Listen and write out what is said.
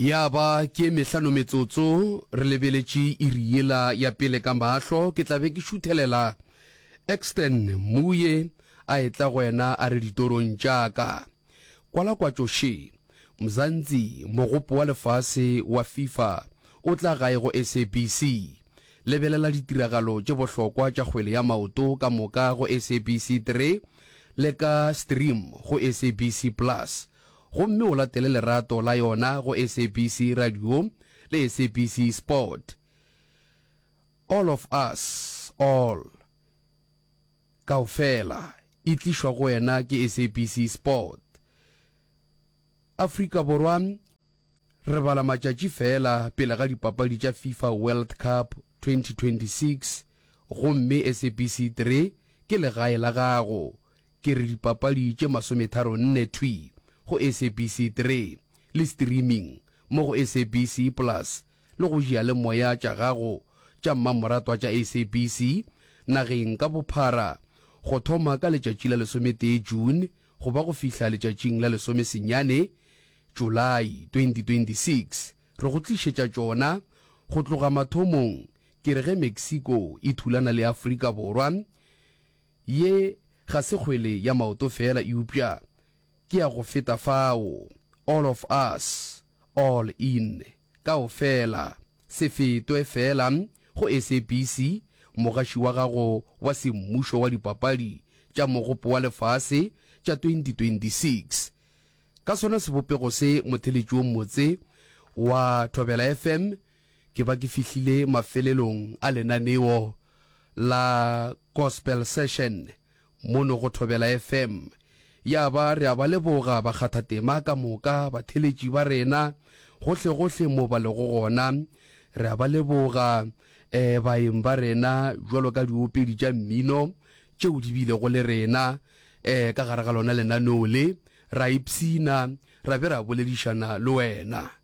Ya ba ke e mehlano metsotso, re lebeletše iri yela ya pele ka mahlo, ke tla be ke šuthelela. Exton, Muye, a etla go wena a re ditorong tša ka. Kwala kwatšo še. Mzansi, Mogopo wa Lefase wa Fifa o tla gae go SABC. Lebelela ditiragalo tše bohlokwa tša kgwele ya maoto ka moka go SABC 3 le ka stream go SABC Plus. gomme o latele lerato la yona go SABC Radio le SABC Sport. All of Us, All, Kaofela, e tlišwa go wena ke SABC Sport. Afrika Borwa re bala matšatši feela pele ga dipapadi tša FIFA World Cup 2026 gomme SABC 3 ke legae la gago, Ke re dipapadi tše masometharo nne thwi go SABC 3 le streaming mo go SABC Plus le go diyalemoya tša gago tša mmamoratwa tša SABC nageng ka bophara go thoma ka letšatši la lesometee June go ba go fihla letšatšing la lesomesenyane July 2026. Re go tlišetša tšona go tloga mathomong ke re ge Mexico e thulana le Afrika Borwa Ye ga se kgwele ya maoto feela eupša ke ya go feta fao. All of us, all in, kaofela. Se fetwe feela go SABC, mogaši wa gago wa semmušo wa Dipapadi tša Mogopo wa Lefase tša 2026. Ka sona sebopego se motheletši wo motse wa Thobela FM Ke ba ke fihlile mafelelong a lenaneo la Gospel Session mono go Thobela FM, ya ba re a ba leboga bakgathatema ka moka, batheletši ba rena, gohlegohle mo ba lego gona. Re a ba leboga um baeng ba rena bjalo ka diopedi tša mmino tšeo di bilego le rena um ka gare ga lona lenaneo le, ra ipshina ra be ra boledišana le wena.